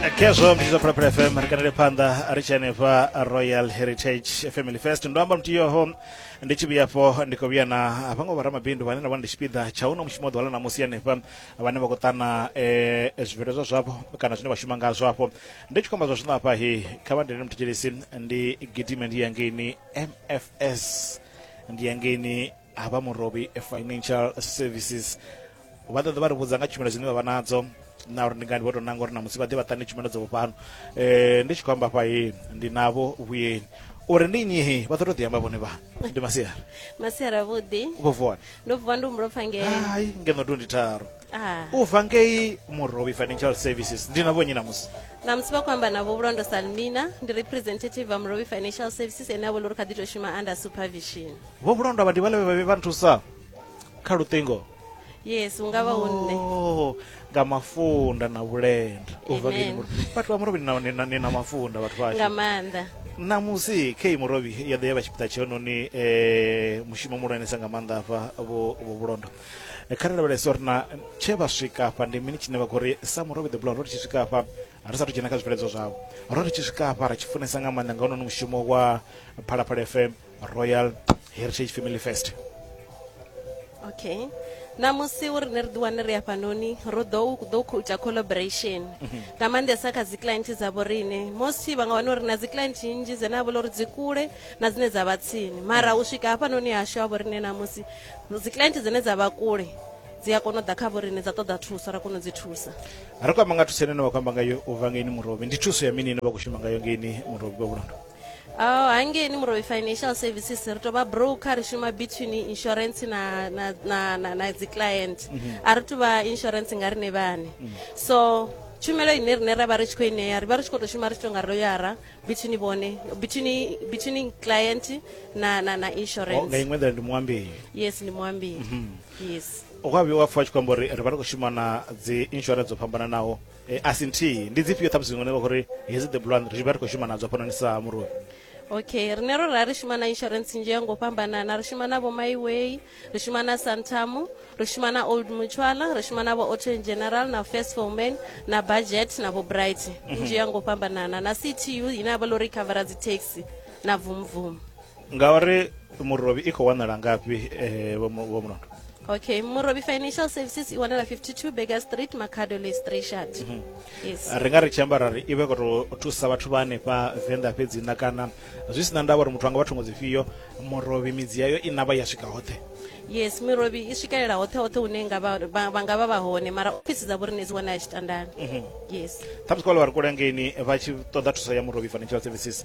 khezwo mbidzo phalaphala fm ri kanele phanḓa ri tshi hanefha royal heritage family fest ndo amba mutiyoho ndi tshi vhuyafho ndi khou vhuya na vhaṅwe vharamabindu vhane nda vha ndi tshipiḓa tsha uno mushumo ḓuvha ḽa ṋamusi hanefha vhane vha khou ṱana um zwibveledzwa zwavho kana zwine vha shuma ngazwo afho ndi tshi khou amba zwa zwino afha hi kha vha ndene muthetshedzisi ndi gidime ndi yangeini mfs ndi yangeini ha vha murobi financial services vha ṱoḓa vha ri vhudza nga tshumelo dzine vha vha nadzo na uri ndi ngani vho tou nanga uri na musi vha ḓe vha ṱane tshumelo dzo vhofhano um eh, ndi tshi khou amba fhahe ndi navho vhuyeni uri ndi nnyihi vha ḓo tou ḓiamba vhone vha ndi masiara masiara vhuḓi vho vuwana ndo vuwa ndi humbulo pfa ngei hai ngeno tu ndi tharo ah. u bva ngei murobi financial services ndi na vhonyi namusi namusi vha khou amba navho vhulondo salmina ndi representative va murobi financial services ene a vholo uri kha ḓi tou shuma under supervision vho vhulondwa vhadi vhale vhavhi vha nthusa kha luṱingo yes u nga vha u nṋe Oh, nga mafunda na vhulenda u bva Amen. ngeno vhathu vha murobi ni na- ni na- ni na mafunda vhathu nga vhashu maanḓa ṋamusi kei murobi ya ḓo ya vha tshipiḓa tshenoni um mushumo muhulwanesa nga maanḓa afha vho vho vhulondo Eh, kha ri lavhelese uri na tshe vha swika afha ndi mini tshine vha khou ri sa murobi the blood ro ri tshi swika afha ri sathu dzhena kha zwibveledzwa zwavho ro ri tshi swika afha ri tshi funesa nga maanḓa nga hononi mushumo wa phalaphala fm royal heritage family fest okay namusi uri ne ri ḓiwane ri hafhanoni ro ḓo ḓo ita collaboration mhm. nga maanḓesa kha dzi client dzavho rine mosi vha nga wana uri na dzi client nnzhi dzine a vholo uri dzi kule na dzine dza vha tsini mara u swika hafhanoni hashu ha vhorine namusi dzi client dzine dza vha kule dzi a kona u ḓa kha vhorine dza ṱoḓa thuso ra kona u dzi thusa ri khou amba nga thuso ine na vha khou amba ngayo u vha ngeini murobi ndi thuso ya mini ine vha khou shuma ngayo ngeini murobi vha vhulondo Oh, hangeni murovi financial services ri tovha broker ri shuma between insurance na, na, na, na, na dziclient mm -hmm. a ri tuvha insurance nga rine vhane mm -hmm. so tshumelo ine rine ra vha ri tshi khou ineya ri vha ri tshi khou tou shuma ri tshi tou nga loyara between vhone between between client na na na insurance oh, nga iṅwe nḓila ndi muambeli yes ndi muambeli mm -hmm. yes o kwa vhuya wa pfha tshi khou amba uri ri vha ri khou shuma na dzi insurance dzo fhambananaho Eh, a si nthihi ndi dzifhio ṱhamusi zwiṅwe vha khou ri hedzi the blond ri tshi vha ri khou shuma nadzo hafhanoni sa muroi okay rine ro ra ri shuma na insurance nzhi ya ngo fhambanana ri shuma na vho myway ri shuma na santamu ri shuma na old mutuala ri shuma na vho auto in general na first foman na budget na vho bright nzhi ya ngo fhambanana na ctu ine ya vha lori covera dzi taxi na vumvumu ngauri murobi i khou wanala ngafhi eh, vho Mu- vho mulondo okay murobi financial services i wanala 52 beger street macado list richard yes ri nga ri tshi amba ra ri i vhe khou tou thusa vhathu vha hanefha venḓa fhedzi na kana zwi si na ndavha uri muthu anga vha thungo dzifhio murobi midzi yayo i navha ya swika hoṱhe yes mirobi i swikelela hoṱhe hoṱhe hune nga vha- vha vha nga vha vha hone mara ofisi dza vhorine dzi wanala tshitandani yes ṱhamusi kwa ḽa vha ri kule ngeini vha tshi ṱoḓa thuso ya murobi financial services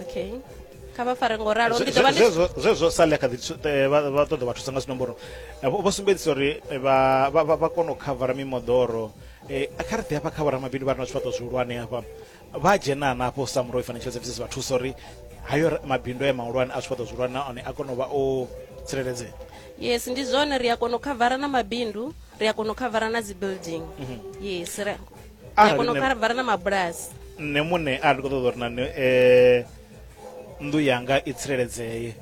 okay kha vha fare ngo ralo ndi dovha zwezwo sale kha eh, vha ṱoḓa vha thusa nga zwinomboro eh, vho sumbedzisa uri eh, vha kona u khavara mimoḓoro kha ri ḓi hafha kha vhoramabindu vha re na zwifhaṱo zwihulwane hafha vha dzhena nafho sa muroi financial services vha thusa uri hayo mabindu a mahulwane a zwifhaṱo zwihulwane na one a kona u vha o tsireledzea yes ndi zwone ri a kona u khavara na mabindu ri a kona u khavara na dzi building mhm. yes kono kha vha re na mabulasi nṋe muṋe a ndi khou ṱoḓa uri nani um nnḓu yanga i tsireledzee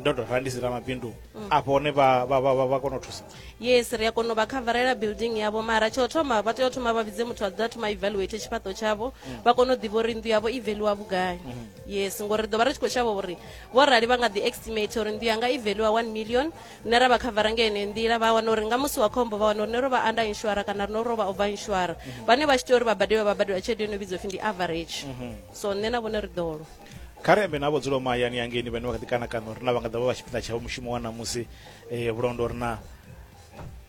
ndo tou rali ndi si ramabindu mm. afho hone vha kona u thusa yes ri a kona u vha khavarela building yavho mara tsho thoma vha tea u thoma vha vhidze muthu a ḓa thoma evaluate tshifhaṱo tshavho mm. vha kona u ḓivha uri nnḓu yavho i veliwa vhugai mm. yes ngori ri ḓo vha ri tshi khou shavha uri vho rali vha nga ḓi estimate uri nnḓu yanga i veliwa one million rine ra vha khavara nga ene nḓila vha wana uri nga musi wa khombo vha wana uri ne ro vha anda inshwara kana rino ro vha over inshwara mhm. vhane vha tshi tea uri vha badeliwe vha badeliwa tshelede yo no vhidzwa pfhi ndi average mhm. so nṋe na vhone ri ḓolo kharembe na vho dzula mahayani yangeni vhane vha kha ḓi kana kana uri na vha nga ḓa vha vha tshifhinga tshavho mushumo wa ṋamusi um eh, vhulondo uri na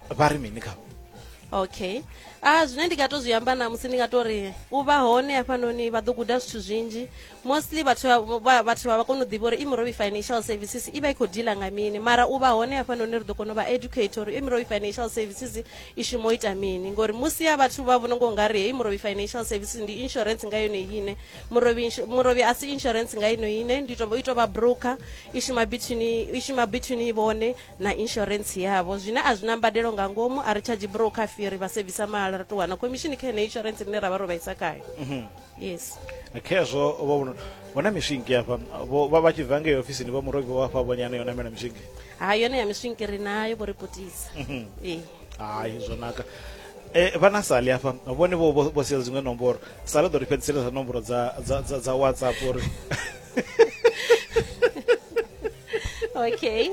vha ri mini khavho okay a ah, zwine ndi nga to zwi amba na musi ndi nga to ri u vha hone hafhanoni vha ḓo guda zwithu zwinzhi mostly vhathu vha vhathu vha vha kona u ḓivha uri imrovi financial services i vha i khou dila nga mini mara u vha hone hafhanoni ri ḓo kona u vha educate uri imrovi financial services i shumo ita mini ngori musi ya vhathu vha vhona ngo nga ri hei murovi financial services ndi insurance nga yone ine murovi murovi a si insurance nga ino ine ndi to i to vha broker i shuma between i shuma between vhone na insurance yavho zwine a zwi na mbadelo nga ngomu a ri charge broker fee ri vha sevisa mahala ri to wana commission kha ine insurance ine ra vha ro vhaisa khayo mhm. yes Eh, khezwo vho vhuno- vho na miswinki afha vho- vha vha tshi bva ngei ofisini vho muroki vho afha vhonyana yo namela miswinki ha yone ya miswinki ri nayo vho ri putisa ee hayi zwo naka Eh, vha na sali afha vhone vho vho- vho sia dziṅwe nomboro sali ḓo ri fhedzisela dza nomboro dza dza- dza- dza whatsapp uri okay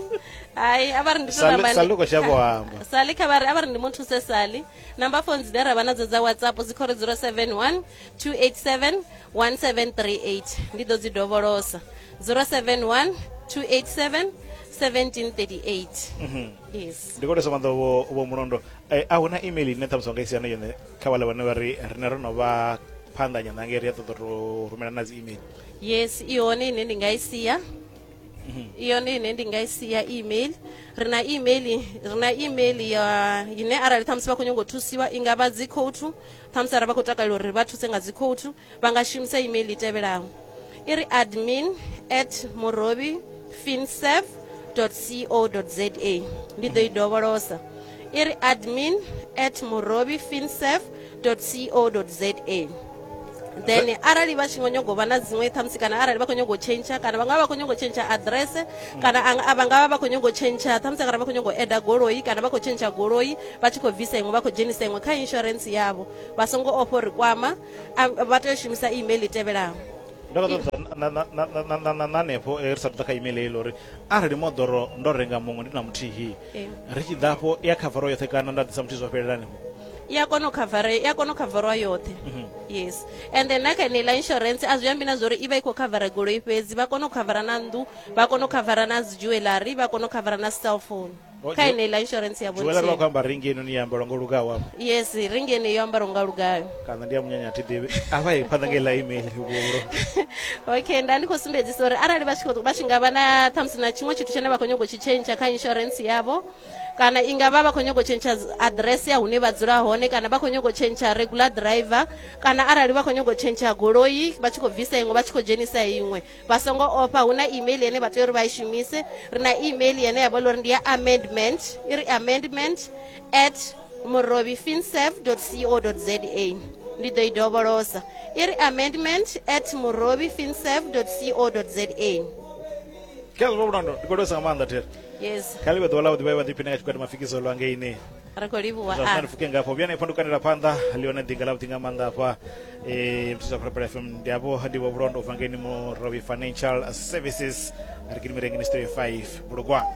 hayi a vha ri ndi to Sali- namba ndi- Sali u khou shavha u amba. sali kha vha ri a vha ri ndi mu thuse sali number phones dze ra vha nadzo dza whatsapp dzi khori 071 287 1738 ndi ḓo dzi dovholosa 071 287 1738 mhm. yes ndi khou thesa maḓo vho mulondo eh, a hu na email ine ṱhamusi wa nga isiana yone kha vhale vhane vha ri rine ro no vha phanḓa nyanḓa ngei ri a ṱoḓa to rumela na dzi email yes i hone ine ndi nga i sia i yone ine ndi nga i sia email ri na email ri na email ya ine arali ṱhamusi vha khou nyanga u thusiwa i nga vha dzi khoutu ṱhamusi arali vha khou takalela uri vha thuse nga dzi khoutu vha nga shumisa email i tevhelaho i ri admin at murobi finserv co za ndi ḓo i dovholosa i ri admin at murobi finserv www.ccc.co.za then arali vha tshi ngo nyago vha na dziṅwe ṱhamusi kana arali vha khou nyago tshentsha kana vha nga vha khou nyago tshentsha aḓirese kana a vha nga vha vha khou nyago tshentsha ṱhamusi kana vha khou nyago eda goloi kana vha khou tshentsha goloi vha tshi khou bvisa iṅwe vha khou dzhenisa iṅwe kha insurance yavho vha songo ofha uri kwama vha tea u shumisa email i tevhelaho na hanefho ri sa ḓa kha email heilo uri arali moḓoro ndo renga muṅwe ndi na muthihi ri tshi ḓa afho i a khavara yoṱhe kana nda ḓisa muthu zwo fhelelani i a kona u khavara i a kona u khavarwa yoṱhe mhm. yes and then na kha eneiḽa insurance a zwi ambi na zwa uri i vha i khou khavara goloi fhedzi vha kona u khavara na nnḓu vha kona u khavara na dzi jewellery vha kona u khavara na cell phone oh, kha eneiḽa insurance ya vhojewellery vha khou amba ringi enoni ya ambalwa ngo lugaho afho yes ringi enei yo ambalwa nga lugayo kana ndi ya munyanya thi ḓivhi avha i phanḓa ngei ḽa email vhuro okay nda ndi khou sumbedzisa uri arali vha tshi vha tshi nga vha na ṱhamusi na tshiṅwe tshithu tshine vha khou nyanga u tshi tshentsha kha insurance yavho kana i nga vha vha khou nyanga u tshentsha address ya hune vha dzula hone kana vha khou nyanga u tshentsha regular driver kana arali vha khou nyanga u tshentsha goloi vha tshi khou bvisa iṅwe vha tshi khou dzhenisa iṅwe vha songo ofha hu na email yene vha tea uri vha i shumise ri na email yene ya vha uri ndi ya amendment i ri amendment at murovifinsev co za ndi ḓo i dovholosa i ri amendment at murovifinsev co za khezwo vhulondo ndi khou lwesa nga maanḓa thera yes kha ḽi vhe ḓuvha ḽa vhuḓi vha vha ḓiphiṋe nga tshikwata mafikizo lwa ngeini ri khou livhuwa zwa sina ri pfuke ngafho vhuyani ifho ndi kanela phanḓa lione ḓinga ḽa vhuḓi nga maanḓa hafha um muthu sa phalaphala fm ndi avho ndi vho vhulondo ubva ngeni murobi financial services ri kini mirengini studio 5 bulugwani